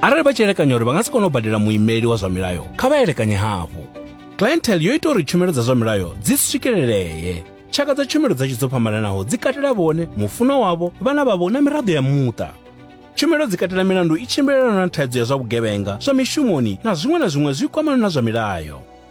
arali vha tshi elekanya uri vha nga si kone u badela muimeli wa zwa milayo kha vha elekanye hafhu clientele yo ita uri tshumelo dza zwa milayo dzi swikelelee tshaka dza tshumelo dza dzo fhambananaho dzi katela vhone mufuno wavho vhana vhavho na miraḓo ya muṱa tshumelo dzi katela milandu i tshimbilelana na thaidzo ya zwa vhugevhenga zwa mishumoni na zwiṅwe na zwiṅwe zwi kwamana na zwa milayo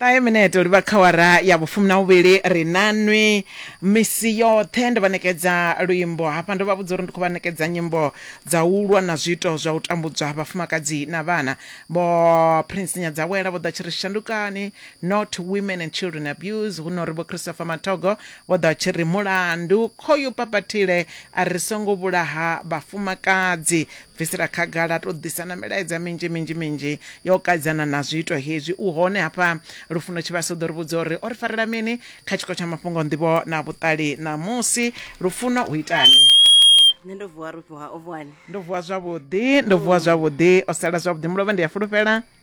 ṱahe minete u livha khawara ya vhufumi na vhuvhili ri nanwi misi yoṱhe ndo vha ṋekedza luimbo hafha ndo vha vhudza uri ndi khou vha ṋekedza nyimbo dza u lwa na zwiito zwa u tambudzwa ha vhafumakadzi na vhana vho prince nyadzawela vho ḓa tshi ri shandukani not women and children abuse hu no ri vho christopher mathogo vho ḓa tshi ri mulandu khoyu papathile a ri songo vhulaha vhafumakadzi bvisela khagala a tou ḓisa na milaedza minzhi minzhi minzhi yo kadzana na zwiito hezwi u hone hafha lufuno tshivhasa u ḓo ri vhudza uri o ri farela mini kha tshiko tsha mafhungo nḓivho na vhuṱali ṋamusi lufuno u itani nṋe ndo vuwa rufhiwa o vuwani ndo vuwa zwavhuḓi ndo vuwa zwavhuḓi o sala zwavhuḓi mulovha ndi a fulufhela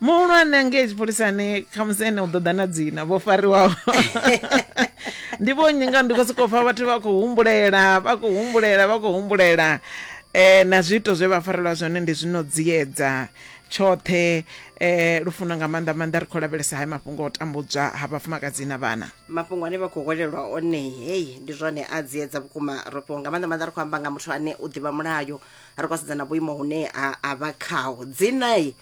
muhulwane angei tshipholisani khamusi ene u ḓo ḓa na dzina vho fariwaho ndi vho nnyi nga ndi khou sokou pfa vhathu vha khou humbulela vha khou humbulela vha khou humbulela um na zwiito zwe vha farelwa zwone ndi zwino dziedza tshoṱhe um lufuno nga maanḓa maanḓa ri khou lavhelesa hayo mafhungo o tambudzwa ha vhafumakadzi na vhana mafhungo ane vha khou hwelelwa one heyi ndi zwone a dziedza vhukuma ro fhiwa nga maanḓa maanḓa ri khou amba nga muthu ane u ḓivha mulayo ri khou sedza na vhuimo hune a vha khaho dzinai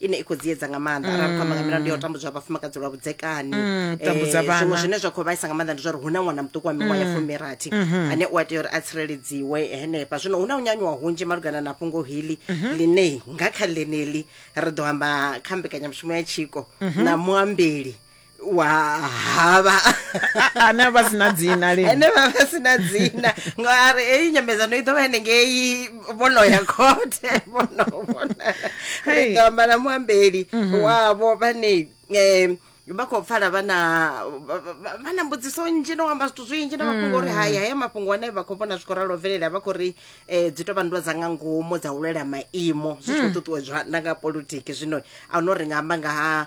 ine i khou dziedza nga maanḓa mm. arali khou amba nga milandu ya u tambudzwa ha vhafumakadzi lwa vhudzekani mm, eh, zwiṅwe zwine zwa khou vhaisa nga maanḓa ndi zwa uri hu na ṅwana muṱuku wa miṅwaha ya mm. fumirathi mm-hmm. ane u a tea uri a tsireledziwe henefha zwino hu na u nyanyuwa hunzhi malugana na fhungo hili mm-hmm. ḽine nga kha ḽeneli ri ḓo amba kha mbekanyamushumo ya tshiko mm-hmm. na muambeli wa havha ane a vha si na dzina lini ene vha vha sina dzina ngori heyi nyambedzano i ḓo vha henengei vhono ya khothe vhono vhona Hey. ri ḓo amba na muambeli wavho vhane um vha khou pfala vha na vha- vha vha na mbudziso nnzhi no amba zwithu zwinzhi na mafhungo uri hai haya mafhungo ane vha khou vhona zwi khou ralo bvelela vha khou ri um dzi tou vha nndwa dza nga ngomu dza u lwela maimo zwi tshi khou ṱuṱuwedzwa na nga politiki zwino a no ri nga amba nga ha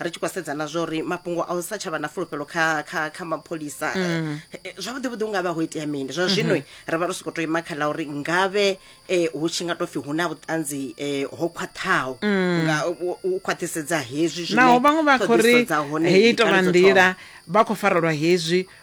ri tshi khou sedza na zwa uri mafhungo a u sa tsha vha na fulufhelo kha kha kha mapholisa mm. eh, eh, zwavhuḓi vhuḓi unga vha ho itea mini zwa zwino mm-hmm. ri vha ri soko to ima kha ḽa uri ngavhe eh, hu tshi nga to pfi hu na vhuṱanzi ho khwaṱhaho mm. nga u khwaṱhisedza hezwi zwine naho vhaṅwe vha khou ri heyi tovha nḓila vha khou farelwa hezwi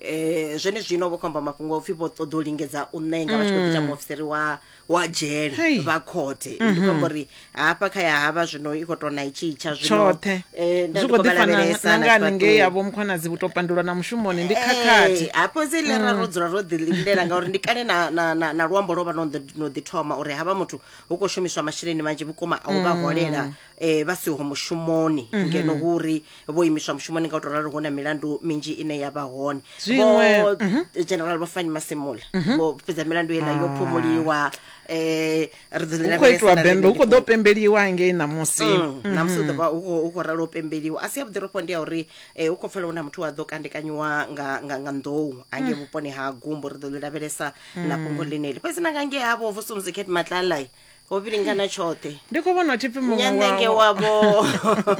eh zwenezwino vho khomba mafhungo upfi vho ṱoḓa u lingedza u ṋenga vha tshi khou ita muofisiri wa wa dzhele Hei. vha khothe ndi khou amba uri hafha kha ya havha zwino i khou tou na itshi tsha zwino tshoṱhe eh, nda zwi ndi khou khou vha ḓifana lavhelesa na na nga haningei tshifhaṱuwo. yavho mukhonadzi vhu tou pandulwa na mushumoni ndi khakhathi Eh, hafho dzi lera ro dzula ro ḓi lindela ngauri ndi kale na, na, na, na luambo lwo vha no ḓi- no ḓi thoma uri havha muthu hu khou shumiswa masheleni manzhi vhukuma a u vha holela eh vha siho mushumoni mhm. ngeno hu uri vho imiswa mushumoni nga u tou ralo hu na milandu minzhi ine ya vha hone vho mhm. general vhafani masimula mhm. vho fhedza milandu yela yo ah. phumuliwa eh hu khou itiwa bembe hu khou ḓo pembeliwa ngei ṋamusi mm, ṋamusi ḓovha hu khou ralo pembeliwa a si yavhuḓi ro ndi ya uri eh, hu khou pfela hu na muthu wa ḓo kandekanyiwa nga nga nḓou angei mm. vhuponi ha gumbo ri ḓo ḽi lavhelesa na mm. fhungo ḽineli fhedzi na nga ngei havho vho somzicat matlalai ho vhilingana tshoṱhe ndi khou vhona thi pfi muṅwe nyanenge wavho wavho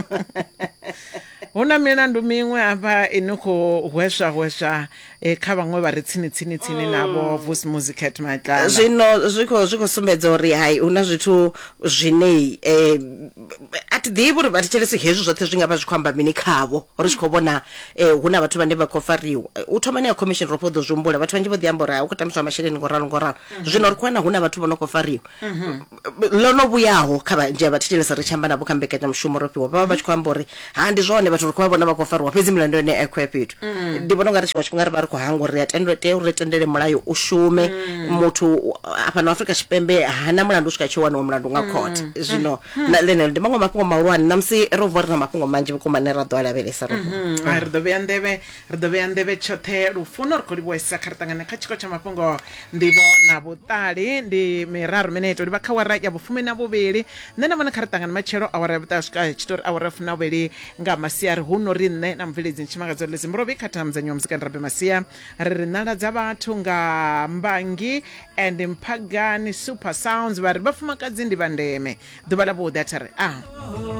hu na milandu miṅwe hafha i no khou hweswa hweswa eh, kha vhaṅwe vha re tsini tsini tsini navho vusi musicat matlana zwino zwi khou zwi khou sumbedza uri hai hu na zwithu zwine eh, a thi ḓivhi uri vha thetshelesi hezwi zwoṱhe zwi nga vha zwi khou amba mini khavho ri tshi khou vhona eh, hu na vhathu vhane vha khou fariwa Eh, u thomani ya commission ro fho ḓo zwi humbula vhathu vhanzhi vho ḓi amba uri hai u khou tambiswa masheleni ngo ralo ngo ralo mhm. zwino ri khou wana hu na vhathu vho no khou fariwa mhm. ḽo no vhuyaho kha vhanzhi a vha thetshelesa ri tshi amba navho kha mbekanyamushumo ro fhiwa vha vha vha tshi khou amba uri ha ndi zwone vhathu ri khou vha vhona vha khou fariwa fhedzi milandu yone a khou ya fhethu mhm. ndi vhona u nga ri tshiṅwe tshifhinga ri vha ri khou hangwa uri ri tea uri ri tendele mulayo u shume muthu fhano afrika tshipembe hana mulandu u swika tshi waniwa mulandu nga khothe zwino ḽeneḽo ndi maṅwe mafhungo mahulwane namusi ro vuwa ri na mafhungo manzhi vhukuma ane ra ḓo a lavhelesa ro ri ḓo vhea nḓevhe Ri ḓo vhea nḓevhe tshoṱhe lufuno ri khou livhuwesa kha ri ṱangane kha tshiko tsha mafhungo nḓivho na vhuṱali ndi miraru mineto livha kha wara ya vhufumi na vhuvhili nṋe na vhone kha ri ṱangane matshelo awara ya vhuṱaha swika tshitori awara ya fumi na vhuvhili nga masiari hu no ri nṋe na mubveledzi ntshimangadzo ḽi zimburovhi kha thamu dza nyuma muzikani rabe masia ri ri nala dza vhathu nga mbangi and mphagani super sounds vha ri vhafumakadzi ndi vha ndeme ḓuvha ḽa vhuḓi a tha ri a